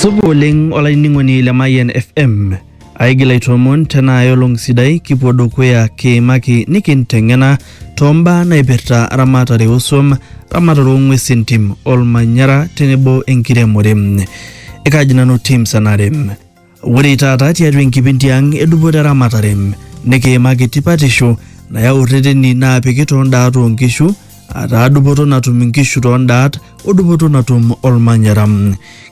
Supa oleng olainining'oni le Mayian FM. Aigil aitoomon tena ai olong sidai kipuo dukuya kiimaki nikinteng'ena tombaa naipirta ramatare osuam, ramatare ong'uesi entim, olmanyara tenebo enkiremore. Ekaji nanu Tim Sanarem. Ore taata tiatua enkipindi ang edupoto eramatare nikiimaki tipatisho nayau rreteni naapiki too ndaat oo nkishu ataa dupoto natum inkishu too ndaat o dupoto natum olmanyara.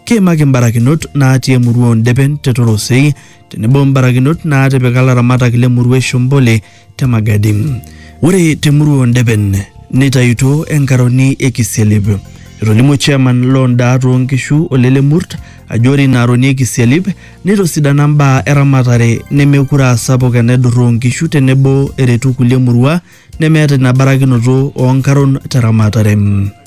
Kiimaki mbarakinot naatii emurua oo Ndepen te Torosei tenebo mbarakinot naatipika laramatak le murua e Shombole te Magadi. Ore te murua oo Ndeben neitayutuo enkaroni e Kisialip. Etolimuo chairman loo ndaat oo nkishu Ole Lemurt ajo ore ina aroni e Kisialip neitosidana mbaa eramatare nemekure aa sapuk enaidurra oo nkishu tenebo eretu kulie murua nemeeta ina barakinoto oo nkaron te ramatare.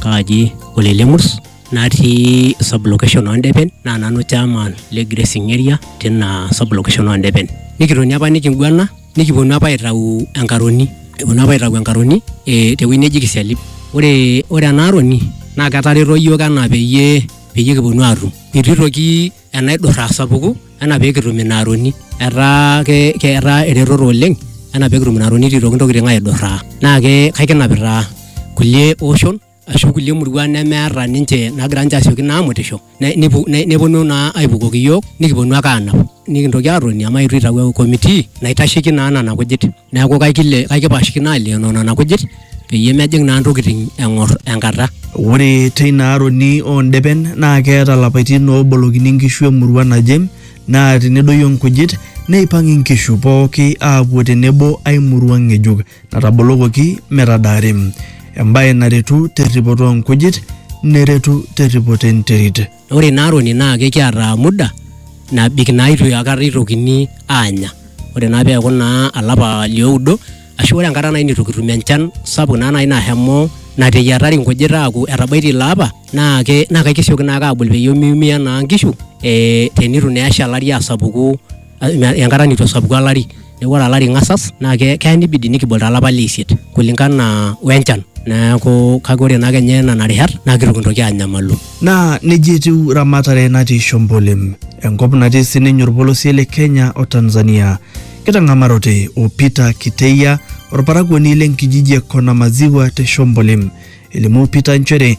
kaaji Ole Lemurs natii sub location oo Ndepen naa nanu chairman le grazing area tina sub location oo Ndepen. Nikitoni apa nikiguana nikiponu apa aitau enkaroni eponu apa aitau enkaroni eh, tewueji neji kisialip ore ore ena aroni naa ketareto iyiook enaa peyie peyie kiponu atum itu itoki enaidurra asapuku enaa pekitum ina aroni etaa ke, ke etaa eretoto oleng enaa pekitum ina aroni itu itoki intokitin aidurraa naa ke kaikinapita kulie oshon ashu kulie muruan nemeeta ninche nagira ninche asioki naa amutisho ne- nepu- ne- neponu naa aipukoki iyiook nikiponu ake aanap nikintoki aatoni amu eitu itau committee naitasheki naa nena kujit neeku kaikile kaikipashikino alioyo nena kujit peyie mejing naa ntokitin eng'or enkata Ore teina aroni oo ndepen naa keeta lapaitin oobolokini nkishu emurua naje naa tenedoyio nkujit neipang inkishu pooki aapuo tenebo ai murua ng'ejuk. natabolokoki metadaari, embae naretu terripoto oo nkujit neretu terripoto enterit. Ore ina aroni naa kekiata muda nabik naa itu akata itokini aanya. Ore naa peeku naa olapa lioudo ashu ore enkata nai nitu kitum enchan sapuk naa nai nashomo nateyiatari nkujit aaku etabaitie ilo apa naake kesioki naake abul peyie miumia naa nkishu ee tenitu naa esha olari asapuku. enkata neitu esapuku olari neaku ore olari ingasas naa keya neibidi nikibol to lapa le isiet kulingana o enchan neaku kake ore naa kenya nena rishat naa keitu kintoki aanyamalu. Naa nejia etiu ramatare natii Shombolem, enkop natii sininye olpolosie le Kenya o Tanzania. Kitang'amarote o Peter Kiteia, olparakuoni le nkijiji e Konamaziwa te Shombolem. Elimu Peter nchere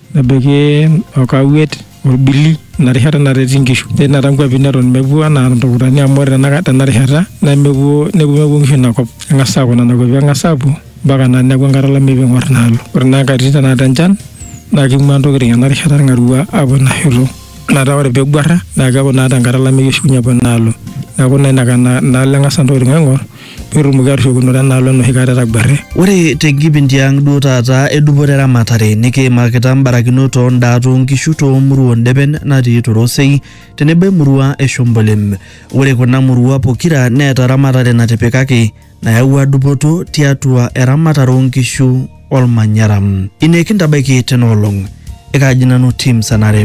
Nebaiki okawuet olbili ina rishata nareti nkishu. Netii taata nkuapi neton mepuo anaa Ntukutani amu ore tenaka tena rishata nemepuo nemepuo nkishu ina kop. Eng'as aaku nena kuapi eng'as aapuo mpaka naa neaku enkata olameyu piing'orr ina alo. Ore naa nkatitin tenakata enchan naa keing'uaa ntokitin ena rishata ilng'arua aapuo ina shoto. Metaa ore peeguarra naa keaku naa tenkata olameyu eshukunye apuo ina alo. Neaku naa inaka inaalo eng'as ntokitin aaing'orr. petumoki atushukunore enaalo enoshi kata etagwarre. Ore te nkipindi ang duo taata e dupoto eramatare nikiimakita mbarakinot oo ndaat oo nkishu too murua oo ndepen natii Torosei tenebo emurua e Shombolem. Ore kuna murua pokira neeta eramatare natipikaki nayawua dupoto tiatua eramatare oo nkishu. olmanyara ine kintabaiki tena olong ekaaji nanu tim sanare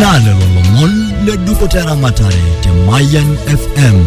naa lelo lomon le dupoto eramatare te Mayan FM.